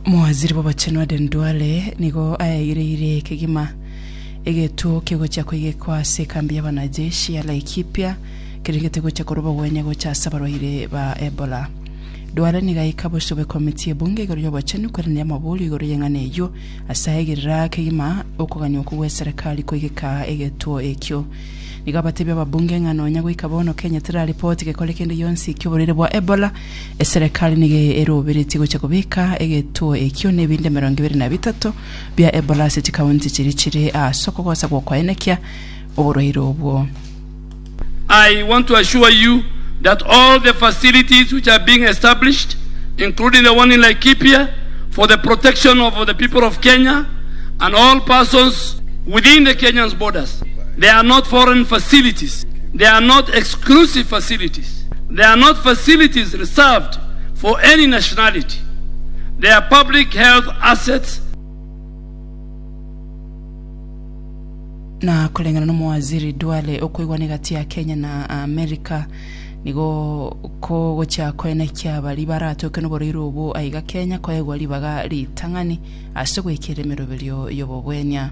Omowaziri bw'Obochenu Aden Duale nigo aeyireire kegima egetuo kegochia koigekwa ase ekambi y'abanajeshi ya Laikipia kerengete gocha korwa obogwenia gocha ase abarwaire ba Ebola. Duale nigo aika bosio bw'ekomiti y'ebunge igoro y'obochenu koiraneria amaborio igoro y'eng'ana eyio ase aegerera kegima okogania okwo gw'eserekari koigeka egetuo ekio. Nigo abatebia ababunge ng'a nonya goika bono Kenya teraripoti gekore kende gionsi ki'oborwaire bwa Ebola, eserekari nigo eroberetie gocha kobeka egetuo ekio nebinto emerongo ebere na bitato bia Ebola ase chikaunti chiria chire ase okogosa gw'okoenekia oborwaire obwo. I want to assure you that all the facilities which are being established including the one in Laikipia for the protection of the people of Kenya and all persons within the Kenyan's borders. They are not foreign facilities, they are not exclusive facilities, they are not facilities reserved for any nationality, they are public health assets, Na koreng'ana n'Omowaziri Duale, okoigwana egati ya Kenya na Amerika nigo kogochia koenekia baria baratoke noboroiro obwo aiga Kenya koegwa ribaga ritang'ani ase goikera emeroberio y'obogwenia.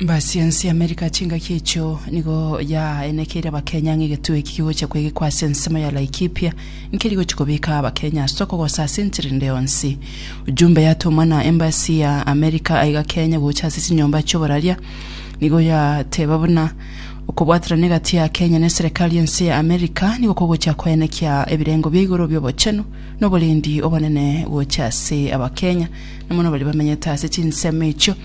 Mbasiensi Amerika chingaki echo nigo yaenekeire abakenya ng'a egetuo eki kigocha kwegekwa ase ensemo ya Laikipia nkeri gochi kobeka abakenya ase okogosa ase enchera ende yonsi. Ujumbe yatomwa na Embassy ya Amerika aiga Kenya gocha ase chinyomba chioboraria nigo yateba buna okobwaterana egati ya Kenya ne serekari ense ya Amerika nigo kogocha koenekia ebirengo bia igoro biobochenu na oborendi obonene gocha ase abakenya na mono baria bamenyete ase chinsemo echio.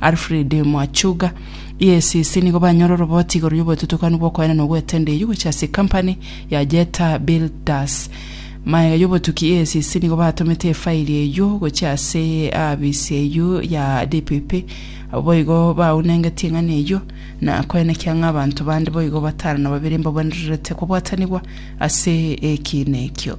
Alfred Mwachuga. EACC nigo banyore oroboti igoro y'obotutukanu bw'okoenena na ogwetenda eyio gochia ase ekampani ya Jetta Builders. Magega y'obotuki EACC nigo batomete efairi eyio gochia ase aabisi eyio ya DPP. Abo boigo baunengetie eng'ana eyio na koenekia ng'a abanto bande boigo batano na babere mbabwenererete kobwatanigwa ase ekiina ekio.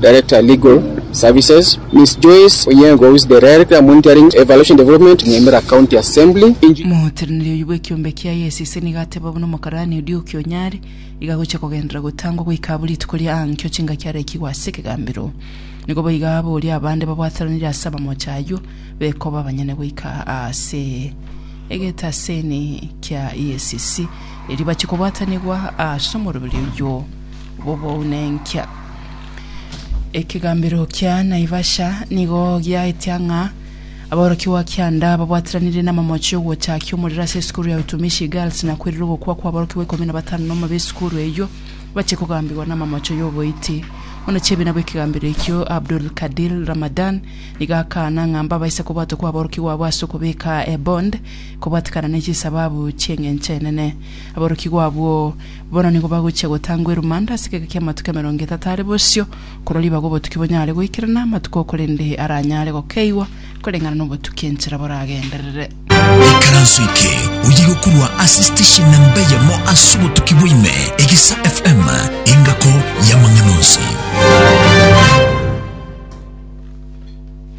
Director Legal Services, Miss Joyce Onyango who is the Director Monitoring Evaluation Development, Nyamira County Assembly, Eng. Moteraneri oyio bw'ekiombe kia ISEC nigo ateba buna omokarani Oduoki Onyari iga agocha kogenderera gotangwa goika abwo rituko ria aankio chingaki arekigwe ase ekegambero. Nigo boiga abo oria abande babwataranire ase abamocha ayio bekoba abanyene goika ase egetaseni kia ISEC erio bache kobwatanigwa ase omoroberi oyio bw'obounenkia. Ekegambero kia Naivasha nigo giaetia ng'a aborokigwa kianda babwatiranire n'amamochi y'ogochakia omorero ase esukuru ya Utumishi Girls na kwerire ogokwa kw'aborokigwa ikomi na batano nomo b'esukuru eyio bache kogambigwa n'amamocho y'oboiti. Omonachiebina bw'ekegambero ekio Abdul Kadir Ramadan nigo akaana ng'a mbabaisa kobwatwa kw'aborokigwa abwo ase okobeka ebond kobwatekana ne chisababu chi'engencho enene. Aborokigwa abwo Bono nigo bagochia gotangwa erumande ase egeka ki'amatuko emerongo etato are bosio, korwa ribaga obotuki bonyare goikerana amatuko o korende aranyare gokeigwa koreng'ana nobotuki enchera boragenderere. Ekaranso eke oye gokorwa ase station namba eyemo ase obotuki bwaime, Egesa FM, engako y'amang'ana onsi.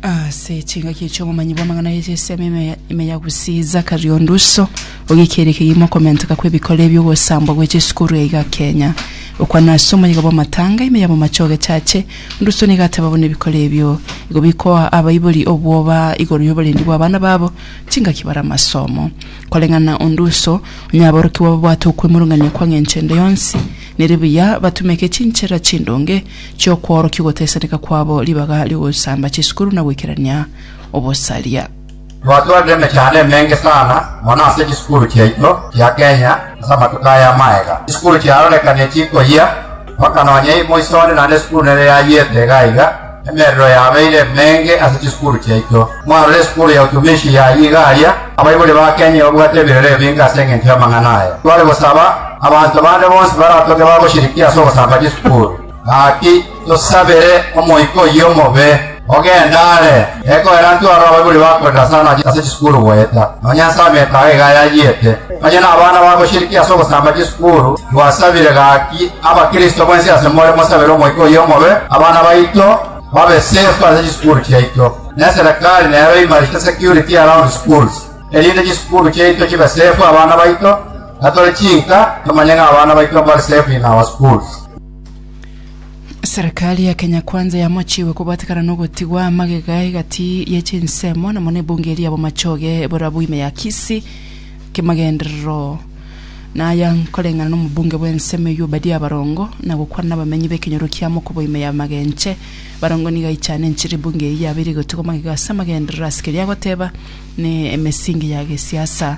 Ase chingaki echi omomanyi bw'amang'ana ye chisemi ime ya- ime ya Gusii Zachary Onduso ogekiire kegima okomenteka kw'ebikora ebi'ogosambwa gwe chisukuru yaiga Kenya. Okwana ase omoyega bw'amatanga ime ya bomache ogechache, Onduso nigo ateba buna ebikora ebio igo bikoa abaibori obwoba igoro y'oborendi bw'abana babo chingaki bare amasomo. Koreng'ana Onduso, onye aborokigwa babwate okwemurungania kwa ng'encho ende yonsi, nere buya batumeke chinchera chindonge chi'okworokigwa otesaneka kwabo, ribaga ri'ogosamba chisukuru na goikerania obosaria. Twatwarire emechando emenge sana mono ase chisukuru chiaito chia Kenya ase amatuko aya amagega. Chisukuru chiarorekane chikoyia mpaka nonya moiso one naende esukuru nere yayiete iga iga. Emerero yabeire emenge ase chisukuru chiaito. Mwarore esukuru ya Utumishi yayia iga aria. Abaibori ba Kenya babwate ebirero ebinge ase engencho y'amang'ana aya. Tware gosaba Abanto bande bonsi baratoke bagoshirikia ase ogosamba Yeso Paulo. Gaki, tosabere omoika oyio omobe, ogende are, ekoera intwe aro abaibori bakorera sana ase chisukuru goeta nonya ase ameko aa iga yayiete. Onye nabana bagoshirikia ase ogosamba Yeso Paulo, twasabire gaki Abakristo mwensi asemore mosabere omoika oyio omobe, abana baito babe safe ase chisukuru chiaito, na eserekari nero eimarishe security around schools, erinde chisukuru chiaito chibe safe abana baito, Na tore chinka tomanye ng'a abana baito mbare safe in our schools. Serikali ya Kenya Kwanza yamochiwe kobwatekana nogotigwa amagega egati ye chinsemo namo nebunge eria bomachoge borabu ime ya Kisii kimagenderero naya nkoreng'ana nomobunge bwensemo eyio Obadia Barongo na gokwana nabamenyi bekenyoro kia Mokobo ime ya Magenche Barongo nigo aichane enchera ebunge eyio yabeire egotigwa amagega ase amagenderero ase keria agoteba ne emesingi ya gesiasa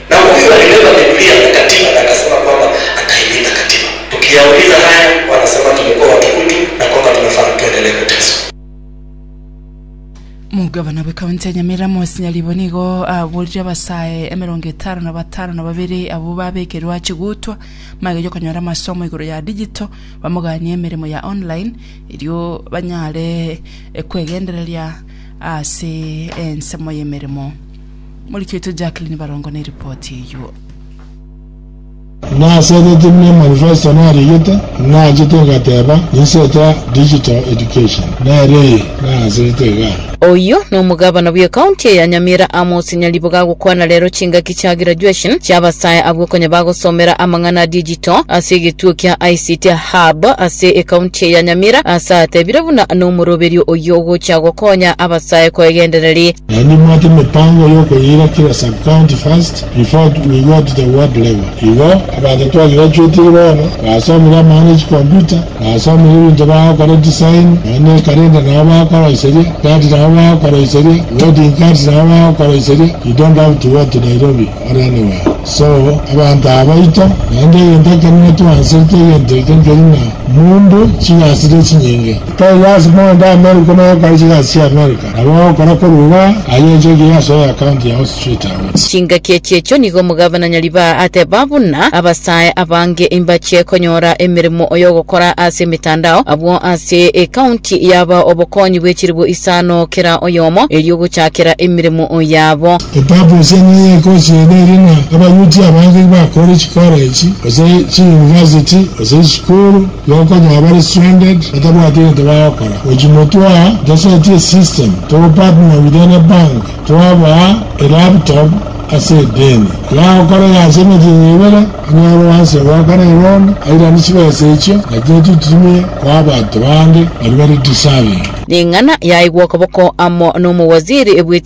Na omokuya ogakebeba Bibilia agatiba, na agasaba kwama akaimia takatiba. Tukiyauliza haya, wanasema tumekuwa watu kutu na kwamba tunafaa tuendelee kuteswa. Omogabana bw'Ekaunti ya Nyamira Moses Nyaribo nigo aburire abasae emerongo etano na batano na babere abwo babekerwe ache gotwa magega y'okonyora amasomo igoro ya digital bamoganie emeremo ya online erio banyare kwegendereria ase ensemo y'emeremo. Omoriki oito Jacqueline Barongo ne ripoti eyio. Nasegeti buna emanifesto nariigete, naachete ngateba, Ninsetsa digital education. Nere eye, nagasegete igaa. Oyio nomogabana bw'ecounty eye ya Nyamira Amos Nyariboga agokwana rero chingaki chia graduation chiabasae abwo konya bagosomera amang'ana a digital ase egetuo kia ICT Hub ase ecounty eye ya Nyamira ase atebire buna nomoroberio oyio ogochia gokonya abasae koegendereri Naende mwate emepango y'okoyira kera sub-county first before we go to the ward level. Igo abanto twagrachuetire bono basomire amang'ana ya chicomputa, basomire ebinto bagokora design, noone calendar nabo bagokoroiseria, chart nabo bagokoroiseria, wedding cards nabo bagokoroiseria, you don't have to go to Nairobi or anywhere. So abanto aba baito, naende egento ekenene twanserete egento eke nkeri ng'a mundu chigasi nechinyinge. Tari lasima onde America noe okore chigasi chi'America. Nabo agokora korwa iga ayenchogie ase eakaunti yao street away. Chingaki echi'echio nigo omogabana Nyaribaa ateba buna abasae abange mbachie konyora emeremo y'ogokora ase emetandao. Abwo ase eakaunti yaba obokonyi bw'echiribu isano kera oyomo, erio gochakera emeremo yabo. Epurpose ene ya ecourse eye neri ng'a abayuti abange bakoore chikora echi gose chiyunivasiti gose chisukuru. Gokonyora bare stranded, batabwati egento bagokora, gochi motwaa ntosetie esystem, togo partner with any bank twabaa elaptop ase edeni yagokora ya ase emeti eye ebere, onyore oanse goakana eloan, airani chibesa echio nachiria tochitumie koa abanto bande baria bare deserving. Ning'ana yaigwa okoboko amo nomowaziri bwe.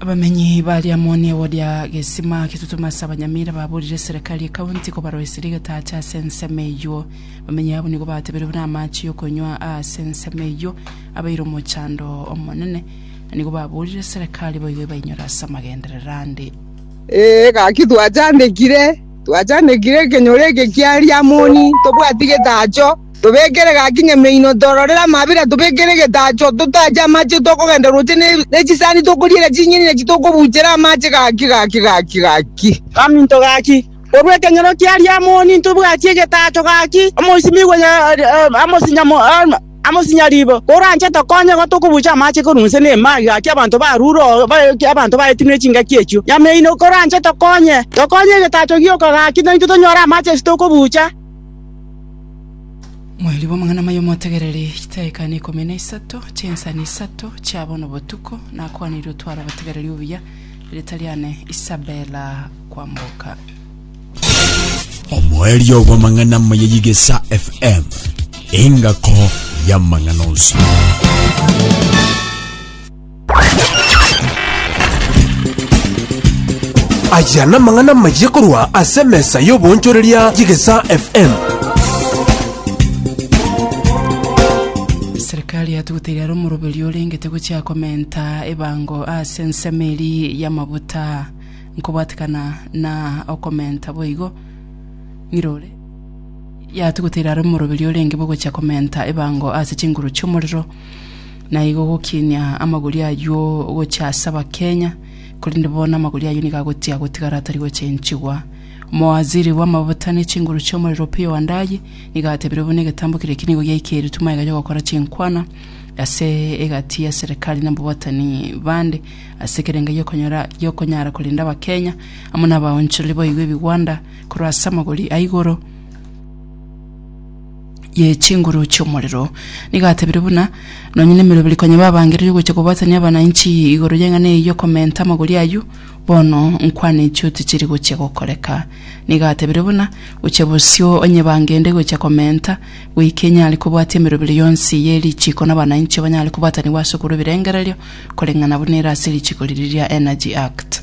Abamenyi baria amo negoria gesima getutumo ase abanyamira baburire serikari ekaunti kobaroiserie getacha ase ensemo eyio. Abamenyi abo nigo batebire buna amache yokonywa aase ensemo eyio abeire omochando omonene na nigo baburire serikari boigo ebainyore ase amagenderero ande. Ee, gaki twachandekire, twachandekire ekenyoro eke kia Riamoni, tobwati getacho. Tobekere gaki nyameino, tororere amabera, tobekere egetacho, totache amache, tokogenda roche ne chisani, tokoriera chinyeni, na chitokobuchera amache gaki gaki gaki gaki. Kaminto gaki, korwa ekenyoro kia Riamoni ntobwatie egetacho gaki, omoisimigwe amosinya riibo, koranche tokonye igo tokobucha amache korwa inse na ime aya gaki abanto barure oo abanto baetenwe chingaki echio. Nyameino, koranche tokonye, tokonye egetacho gioka gaki, naintwe tonyore amache ase tokobucha. Mweri bw'amang'ana mayo motegereri chitaika na ikomi na isato chinsani isato chia bono botuko nakwaniri otware obotegereri obuya rita riane Isabella kwamboka omweri obw'amang'ana maya yigesa fm engako y'amang'ana onsi Aya namang'ana amayia korwa ase emesa y'oboonchoreria y'Egesaa FM. Serikali yatuguteire are omoroberi orengete gochia komenta ebango ase ensemo eria y'amabuta nkobwatekana na okomenta boigo ng'irore yatuguteire are omoroberi orenge bogochia komenta ebango ase chinguru chi'omorero na igo gokinia amagori ayio gochia ase abakenya, korende bono amagori ayio nigo agochia gotigara atari gochenchigwa. Omowaziri bw'amabuta ne chinguru chi'omorero Opiyo Wandayi nigo atebire buna egetambo keria eki nigo giaikeretwe magega y'ogokora chinkwana ase egati ya serikali na ababwatani bande ase ekerengo gi'okonyora gi'okonyara korenda abakenya amo n'abaonchoreri boigo ebigwanda korwa ase amagori a igoro ye chinguru chi'omorero. Nigo atebire buna, Nonye nemeroberi konya babangereria ogocha kobwatania abananchi igoro y'eng'ana eye y'okomenta amagori ayio, bono nkwaneti oti chiri gochia gokoreka. Nigo atebire buna, Gochia bosio onye bangende gocha komenta, goika enyare kobwatia emeroberi yonsi ye richiko n'abananchi banyare kobwatanigwa ase okorwa ebirengererio, koreng'ana buna ere ase richiko riria ria Energy Act.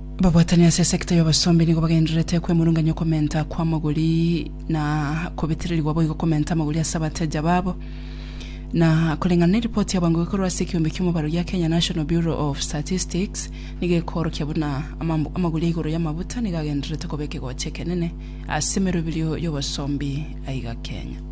Babwatani ase esekta y'obosombi nigo bagendererete kwemurunganya okomenta kw'amagori na kobetererigwa boigo komenta amagori ase abateja babo. Na koreng'ana neripoti ya bwango ekorwa ase ekeombe ki'omobaro gia Kenya National Bureau of Statistics nigo ekoorokia buna amagori ya igoro y'amabuta nigo agendererete koba ekegocha ekenene ase emeroberio y'obosombi aiga Kenya.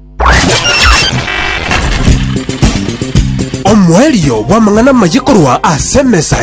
Omoerio bw'amang'ana amaya korwa ase emesa